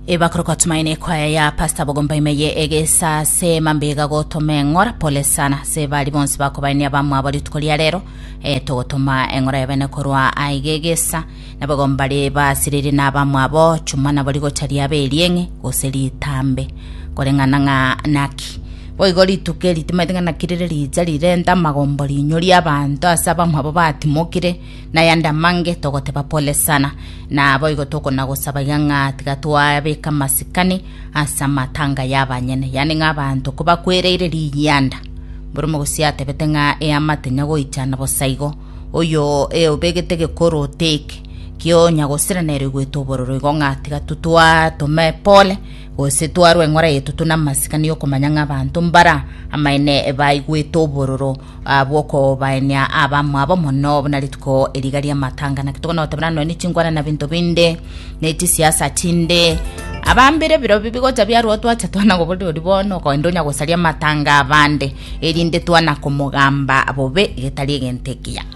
ebakorokwa tumaine ekwaya ya pasta bogomba ime ye egesa se mambega gotoma eng'ora pole sana se bari bonsi bakobaini abamwabo rituko ria rero e, togotoma eng'ora ya bene korwa aiga egesa na bogomba ri basiriri na abamwabo chuma nabo rigocha riaba erieng'e gose ritambe koreng'ana ng'a naki boigo rituko eri timaete ng'a naki rire richa rirenta amagombo rinyori abanto ase abamwabo batimokire na yande amange togoteba pole sana, naboigo tokonagosabaiga ng'a tiga twabeka amasikani ase amatanga y'abanyene, yaani ng'a abanto kobakwereire riyanda. Bore omogosi atebete ng'a eama tenya goicha na bosaigo, oyo e obegete gekoro oteke, kionya gosira nero igwete obororo igo ng'a tiga totwatome pole gose twarwe eng'ora yetutu na amasikani y'okomanya ng'a abanto mbara amaene baigwete obororo Abwo okobaenia abamwabo mono, buna rituko eriga ri'amatanga, naki tokonotebera nonya ne chingwana na binto binde, ne chisiasa chinde. Abambire biro bi bigocha biarwo twacha twana goborori bono, okoenda onya gosaria amatanga abande, erinde twana komogamba bobe getari egento ekiya.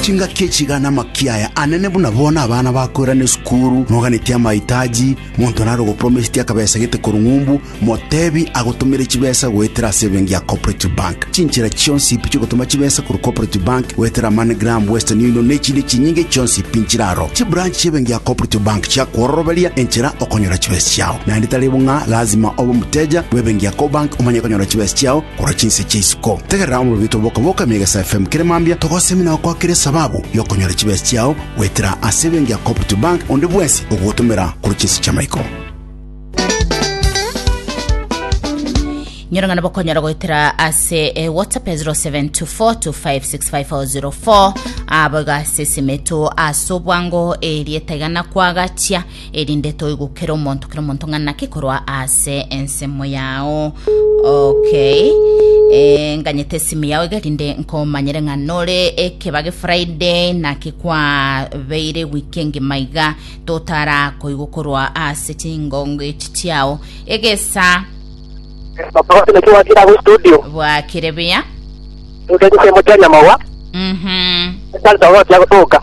Chingaki echi iga namakia aya anene buna bono abana bakoirana esukuru, noganetie amahitaji, monto nare gopromised akabesa gete korwa ng'umbu, motebi agotomere chibesa goetera ase ebenki ya Cooperative Bank. Chinchera chionsi pi chiogotoma chibesa korwa Cooperative Bank goetera MoneyGram, Western Union na echinde chinyinge chionsi pi nchire aro. Chibranch chi'ebenki ya Cooperative Bank chiakwororoberia enchera okonyora chibesa chiao. Naende tari bo ng'a lazima obe omoteja bw'ebenki ya Cobank omanye konyora chibesa chiao, korwa chinse chia isiko. Tegerera omobibiti oboka-boka ime egesa FM kere mambia togosemi na gokwakera esababu y'okonyora chibesa chiao goetera ase ebenki ya Cooperative Bank onde bwensi ogogotomera korwa chinse chi'amaiko. nyorong'ana bokonyora goetera ase eh, whatsapp ya 0724256504 abo iga ase esime eto ase obwango erieta igana kwagatia erinde toigokere omonto kera omonto ng'a naki korwa ase ensemo yao okay Eh, nganyete esimu yao iga erinde nkomanyere ng'a nore ekeba gefriday naki kwabeire wiki engima iga totara koigwa korwa ase chingongo echi chiao egesa Papa watu na kiwa kila kwa studio. bwakire buya Ndio tuseme tena mawa. mhm Sasa watu ya kutoka.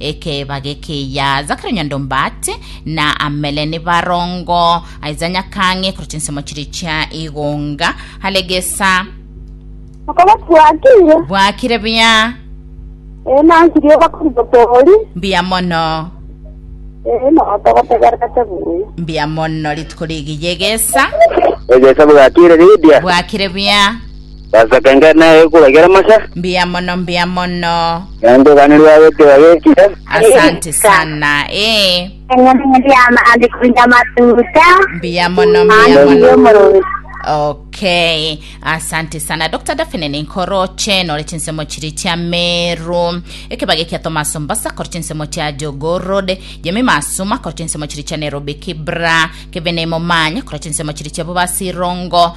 Ekeeba gekeyia Zakaria Nyandombati na Amele nibarongo, Isaiah Nyakang'e korwa chinsemo chiria chia Igunga, Halegesa. Okoboko bwakire. Bwakire buya. Ee nansirie obakuri botori. Mbuya mono. Ee notogotegerete buya. Mbuya mono rituko rigiya egesa. Egesa bwakire ridia. Bwakire buya. Basaka inga na egekura kia Ramasa. Mbuya mono, mbuya mono. Nyango ogane rwago tiga gekire. Asante sana. Eh. Mbuya mono, mbuya mono. Okay. Asante sana. Dr. Daphne Ninkoroche nore chinsemo chiri chia Meru. Ekebage kia Thomas Mbasa kore chinsemo chia Jogoo Road. Jemmy Masuma kore chinsemo chiri chia Nairobi Kibra. Kevin Momanya kore chinsemo chiri chia Bobasi Rongo.